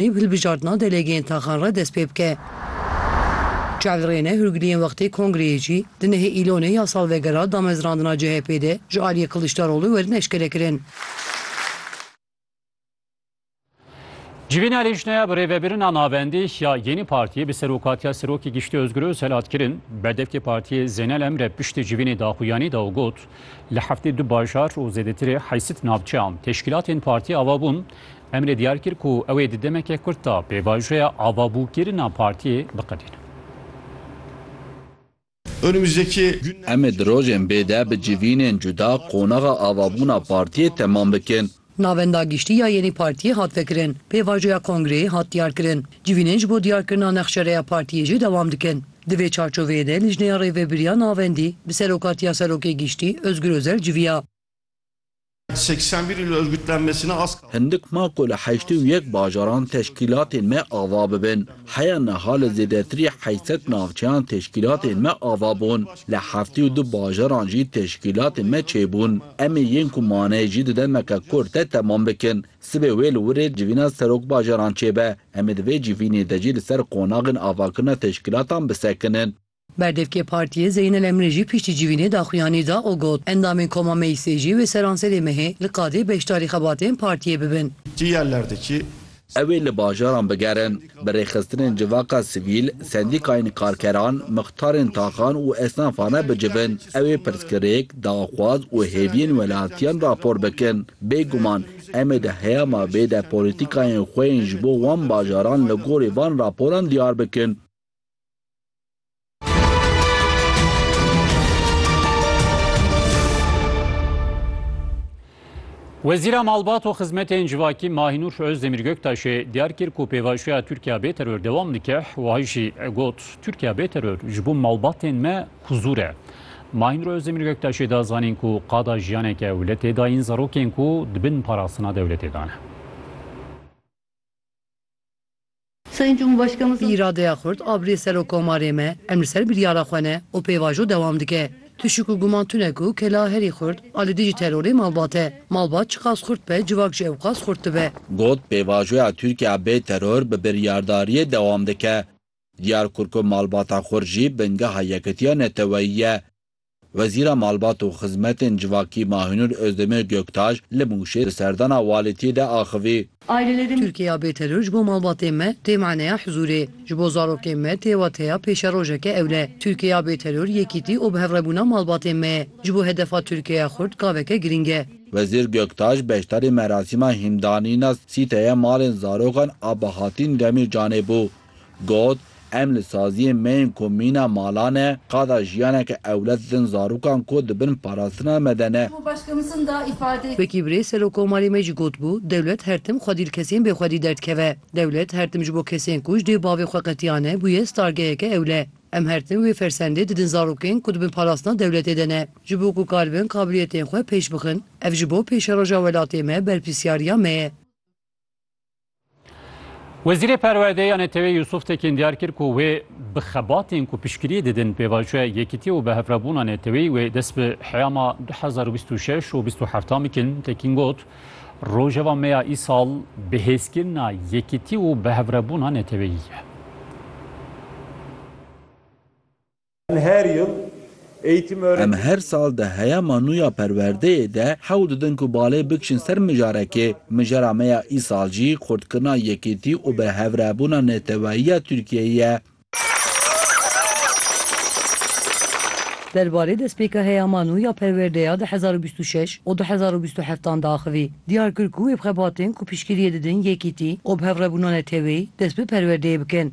Ê hilbijardina delegeyên taxan re dest pê bike. Çel Rêne Hurgiliyên wextê kongreyê jî di nehê Îlonê ya salvegera damezrandina CHP'ê de ji aliyê Kiliçdaroglu werin eşkere kirin. Civîn Alîşneya bi rêvebirina navendî ya Yenî Partiyê bi serokatiya Serokê Giştî Ozgur Ozel hat kirin. Berdevkê partiyê Zeynel Emre piştî civînê daxuyanî da û got, Li heftê du bajar û zêdetirê heysit navçeyan teşkîlatên partiyê ava bûn, Emre diyar kir ku ew ê di demeke kurt de pêvajoya avabûkirina partiyê biqedîne. Em ê di rojên bê de bi civînên cuda qonaxa avabûna partiyê temam bikin. Navenda giştî ya yênî partiyê hat vekirin, pêvajoya kongreyê hat diyarkirin, civînên ji bo diyarkirina nexşereya partiyê jî dewam dikin. Di vê çarçoveyê de Lijneya Rêvebiriya Navendî bi serokatiya Serokê Giştî Ozgur Ozel civiya. Hindik ma ku li heştê û yek bajaran teşkîlatên me ava bibin. Heya niha li zêdetirî heşt sed navçeyan teşkîlatên me ava bûn. Li heftê û du bajaran jî teşkîlatên me çêbûn. Em ê yên ku mane jî di demeke kurt de temam bikin. Sibê wê li Wirê civîna serokbajaran çêbe. Em ê di vê civînê de jî li ser qonaxên avakirina teşkîlatan bisekinin. Berdevkê Partiyê Zeynel Emre jî piştî civînê daxuyanî da û got, Endamên Koma Meclisê jî wê seranserê mehê li qadê beşdarî xebatên Partiyê bibin. Ew ê li bajaran bigerin, bi rêxistinên civaka sivîl, sendîkayên karkeran, mixtarên taxan û esnafane bicivin. Ew ê pirsgirêk, daxwaz û hêviyên welatiyan rapor bikin. Bêguman em ê di heyama vê de polîtîkayên xwe yên ji bo wan bajaran li gorî van raporan diyar bikin. Wezîra Malbat û Xizmetên Civakî Mahînûr Özdemir Göktaşê diyar kir ku pêvajoya Tirkiya bê teror dewam dike wiha jî got Tirkiya bê teror ji bo malbatên me huzûr e. Mahînûr Özdemir Göktaşê da zanîn ku qada jiyaneke ewletê dayîn zarokên ku dibin parastina dewletê dane. Sayın Cumhurbaşkanımız. Bi îradeya xurt a birê Serokomarê me, em li ser biryara xwe ne û pêvajo dewam dike. Tişik û guman tune ku kela herî xurt a li dijî terorê malbat e. Malbat çiqas xurt be civak jî ewqas xurt dibe. Got, Pêvajoya Tirkiye bê teror bi biryardariyê dewam dike. Diyar kir ku malbata xurt jî bingeha yekitiya neteweyî ye. Wezîra Malbat û Xizmetên Civakî Mahinur Ozdemir Göktaş li Mûşê di serdana walîtiyê de axivî. Tirkiya bêteror ji bo malbatên me tê maneya hizûrê. Ji bo zarokên me tê wateya pêşerojeke ewle. Tirkiya bêteror yekîtî û bihevrebûna malbatên me ye. Ji bo hedefa Tirkiyeya xurt gaveke girîng e. Wezîr Göktaş beşdarî merasîma hîndanîna sîteye malên zarokan a Bahatîn Demîrcanê bû. Got, Em li saziyên me yên ku mîna mala ne, qada jiyaneke ewle didin zarokan ku di bin parastina me de ne. Wekî birêz Serokomarê me jî gotbû, dewlet her tim xwedî li kesên bêxwedî derdikeve. Dewlet her tim ji bo kesên ku ji dê bavê xwe qetiyane bûye stargeheke ewle. Em her tim wê fersendê didin zarokên ku di bin parastina dewletê de ne, ji bo ku karibin kabiliyetên xwe pêş bixin. Ev ji bo pêşeroja welatê me berpirsiyariya me ye. Wezîrê Perwerdeyê ya NTV Yusuf Tekin diyar kir ku wê bi xebatên ku piştgiriyê didin pêvajoya yekitî û bihevrebûna NTV'ê wê dest bi heyama du hezar û bîst û şeş û bîst û heftan bikin. Tekin got, Rojeva me ya îsal bihêzkirina yekitî û bihevrebûna NTV'ê ye. Em her yil eğitim öğretim. Em her sal di heyama nû ya perwerdeyê de hewl didin ku balê bikişin ser mijarekê. Mijara me ya îsal jî xurtkirina yekîtî û bi hev re bûna neteweyî ya Tirkiyeyê ye. Derbarê destpêka heyama nû ya perwerdeya di hezar û bîst û şeş û du hezar û bîst û heft an diaxivî, diyar kir ku wê bi xebatên ku piştgiriyê didin yekîtî û bi hev re bûna neteweyî dest bi perwerdeyê bikin.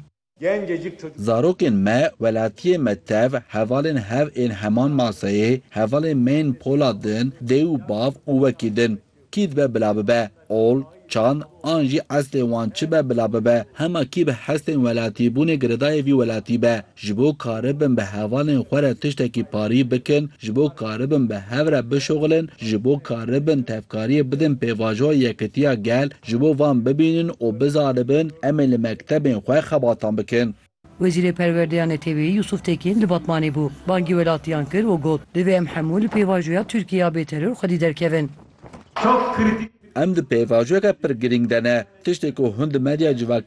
Zarokên me, welatiyê me tev, hevalên hev ên heman maseyê, hevalên me yên polat in, dê û bav û wekî din. Kî dibe bila bibe, ol, çand an jî eslê wan çi be bila bibe, hema kî bi hestên welatîbûnê giredayê vî welatî be, ji bo karibin bi hevalên xwe re tiştekî parî bikin, ji bo karibin bi hev re bişoxilin, ji bo karibin tevkariyê bidin pêvajoya yekitiya gel, Ji bo van bibînin û bizanibin, em ê li mektebên xwe xebatan bikin. Wezîrê Perwerdeya Neteweyî Yusuf Tekîn li Batmanê bû, bangî welatiyan kir û got, Divê em hemû li pêvajoya Tirkiye ya bêteror xwedî derkevin. Em di pêvajoyeke pir girîng de ne. Tiştê ku hûn di medya civakî